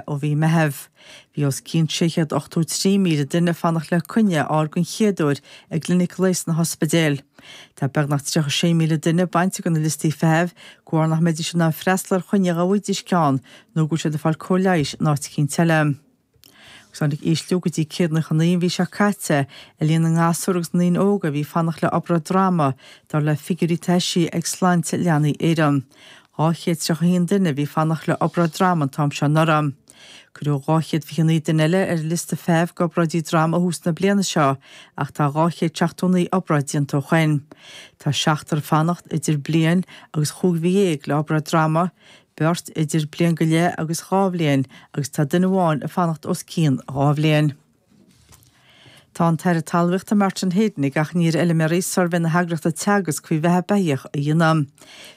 ó mhí Meitheamh. Bhí os cionn 683,000 duine ag fanacht le coinne a fháil den chéad uair i gclinic leighis sna hospidéil. Tá beagnach 36,000 duine bainte de na liostaí feithimh, de bharr nach mbeidís in ann freastal ar choinne dá bhfaighidís ceann nó go bhfuil siad ag fáil cóir leighis in áit éicint eile. Agus tháinig ísliú go dtí 199 an mhí seo caite ar líon na ngasúr agus na ndaoine óga a bhí ag fanacht le obráid droma, dar le figiúirí atá eisithe ag Sláinte Leanaí Éireann. 231 duine a bhí ag fanacht le obráid droma an t-am seo anuraidh. Cuireadh 229 duine eile ar liosta feithimh d'obráidí droma ó thús na bliana seo ach tá 279 obráid déanta ó shoin. Tá seachtar ag fanacht idir bliain agus chúig mhí dhéag le obráid droma, beirt idir bliain go leith agus dhá bhliain agus tá duine amháin ag fanacht os cionn dhá bhliain. Tá an tAire Talmhaíochta Martin Heydon ag achainí ar fheiliméaraí suirbhé na heagraíochta Teagasc faoi bheatha beithíoch a dhéanamh.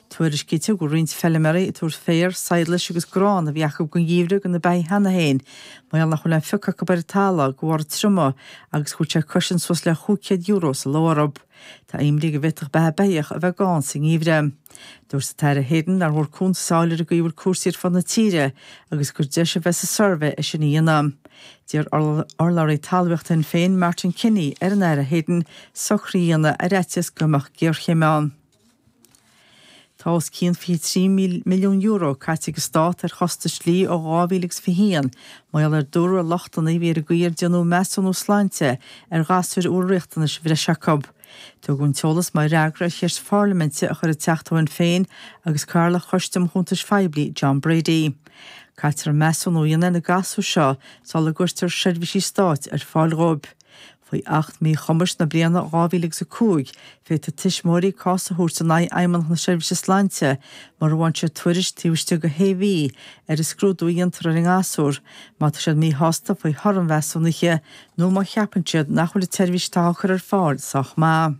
Tuairiscítear go bhfuil roinnt feiliméaraí ag tabhairt féar, sadhlais agus grán a bhí acu don gheimhreadh do na beithígh cheana féin, mar gheall nach bhfuil aon phioc acu ar an talamh, de bharr an triomaigh agus go bhfuil sé ag coisint suas le chúig chéad euro sa ló orthu. Tá imní ann go bhféadfadh beatha beithíoch a bheith gann sa ngeimhreadh. Dúirt an tAire Heydon nár mhór cuntas a fháil ar an gcaoi a bhfuil cúrsaí ar fud na tíre agus gur deis a bheidh sa suirbhé é sin a dhéanamh. D'iarr urlabhraí talmhaíochta Shinn Féin, Martin Kenny, ar an Aire Heydon socruithe a dhéanamh ar fhaitíos go mbeadh géarchéim ann. Tá os cionn €23 milliún caite ag an Stát ar chostais dlí ó 2000 agus 21, mar gheall, a dúradh, ar lochtanna a bhí ar an gcaoi ar déanadh measúnú sláinte ar ghasúir a bhfuil riachtanais bhreise acu. Tugadh an t-eolas mar fhreagra ar cheist pharlaiminte a chuir an Teachta ó Shinn Féin agus cathaoirleach Choiste um Chuntais Phoiblí, John Brady. Caitear an measúnú a dhéanamh ar na gasúir seo sula gcuirtear seirbhísí stáit ar fáil dhóibh. Faoi Acht Míchumais na bliana 2000 agus 5, féadfaidh tuismitheoirí cás a thabhairt in aghaidh Fheidhmeannach na Seirbhíse Sláinte mura bhfaigheann siad tuairisc taobh istigh de shé mhí ar an scrúdú a dhéantar ar an ngasúr má tá siad míshásta faoi thoradh an mheasúnaithe nó má cheapann siad nach bhfuil an tseirbhís atá á cur ar fáil sách maith.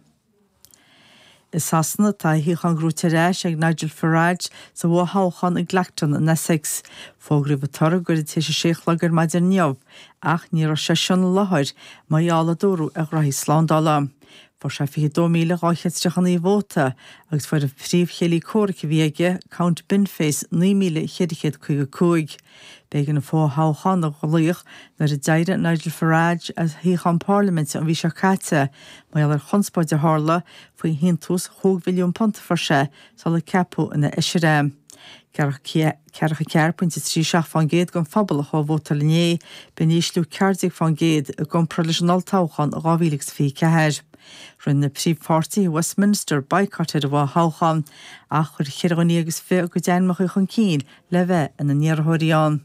I Sasana, tá a shuíochán gnóite ar ais ag Nigel Farage sa bhfo-thoghchán i gClacton in Essex. Fógraíodh an toradh go gairid tar éis a sé a chlog ar maidin inniu, ach ní raibh seisean i láthair, mar gheall, a dúradh, ar ghraithí slándála. Fuair sé 22,239 vóta, agus fuair an príomhchéile comhraic a bhí aige, Count Binface, 9,455. B'éigean an fo-thoghchán a ghlaoch nuair a d'éirigh Nigel Farage as a shuíochán Párlaiminte an mhí seo caite, mar gheall ar chonspóid a tharla faoi shíntiús chúig mhilliún punt a fuair sé sular ceapadh ina fheisire é. Ceathracha ceathair pointe trí seacht faoin gcéad den phobal a chuaigh ag vótáil inné, b'in ísliú ceathair déag faoin gcéad i gcomparáid leis an olltoghchán in 2024. Rinne na príomhpháirtithe i Westminster baghcat ar an bhfo-thoghchán ach chuir ceithre dhuine agus fiche a gcuid ainmneacha chun cinn le bheith ina n-iarrthóirí ann.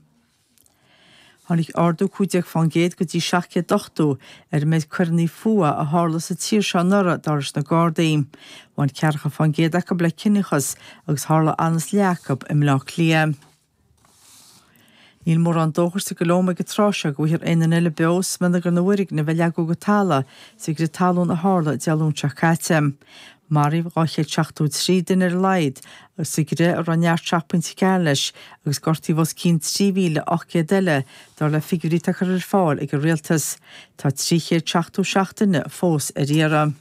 Tháinig ardú 15% go dtí 780 ar an méid coireanna fuatha a tharla sa tír seo anuraidh dar leis na Gardaí. Bhain ceathracha faoin gcéad acu le ciníochas agus tharla ionann is leath acu i mBleá Cliath. Níl mórán dóchais sa gColóim ag an tráth seo go bhfaighfear aon duine eile beo i smionagar na bhfoirgneamh a leagadh go talamh sa gcrith talún a tharla Dé Luain seo caite. Maraíodh 273 duine ar a laghad sa gcrith a raibh neart 7.4 leis agus gortaíodh os cionn 3,800 eile, dar le figiúirí atá curtha ar fáil ag an rialtas. Tá 377 duine fós ar iarraidh.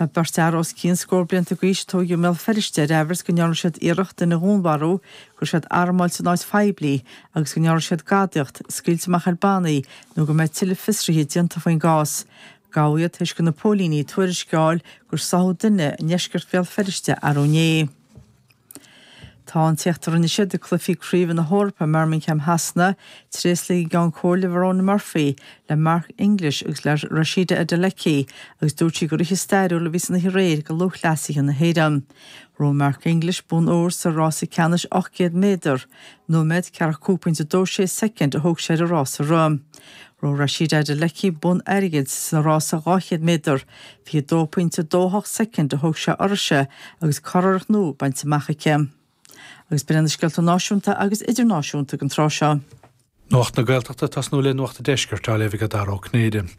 Tá beirt fhear os cionn scór blianta d'aois a tógadh i mBéal Feirste ar aimhreas go ndearna siad iarracht duine a dhúnmharú, go raibh siad armáilte in áit phoiblí agus go ndearna siad gadaíocht, scaoilt amach ar bannaí nó go mbeidh tuilleadh fiosruithe déanta faoin gcás. Gabhadh iad tar éis do na póilíní tuairisc a fháil gur sáthadh duine i ndeisceart Bhéal Feirste arú inné. Tá an t-éacht a rinne siad ag cluichí craoibhe na hEorpa i mBirmingham Shasana tréaslaithe ag an gCeann Comhairle Verona Murphy le Mark English agus le Rhasidat Adeleke agus dúirt sí gur oíche stairiúil a bhí san oíche aréir do lúthchleasaithe na hÉireann. Ghnóthaigh Mark English bonn óir sa rása ceannais 800 méadar. Nóiméad, 45.26 soicind a thóg sé air an rása a rith. Ghnóthaigh Rhasidat Adeleke bonn airgid sa rása 200 méadar. 22.28 soicind a thóg sé uirthise agus curiarracht nua bainte amach aici. Agus b'in é na scéalta náisiúnta agus idirnáisiúnta ag an tráth seo. Nuacht na Gaeltachta ag tosnú le Nuacht an Deiscirt á léamh ag Dara Ó Cinnéide.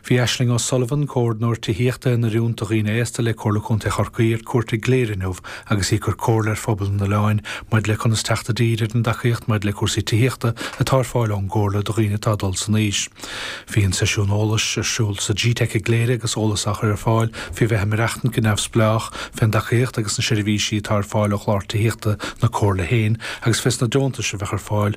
Bhí Aisling O'Sullivan, Comhordnóir Tithíochta in Oiriúnt do Dhaoine Aosta le Comhairle Contae Chorcaí ar cuairt i gCléire inniu agus í ag cur comhairle ar phobal an oileáin maidir le conas teacht i dtír ar an dtacaíocht maidir le cúrsaí tithíochta atá ar fáil ón gComhairle do dhaoine atá ag dul san aois. Bhí an seisiún eolais ar siúl sa G-Teic i gCléire agus eolas á chur ar fáil faoi bheith ag maireachtaint go neamhspleách, fén dtacaíocht agus na seirbhísí atá ar fáil ó chlár tithíochta na Comhairle féin agus fés na deontais a bheadh ar fáil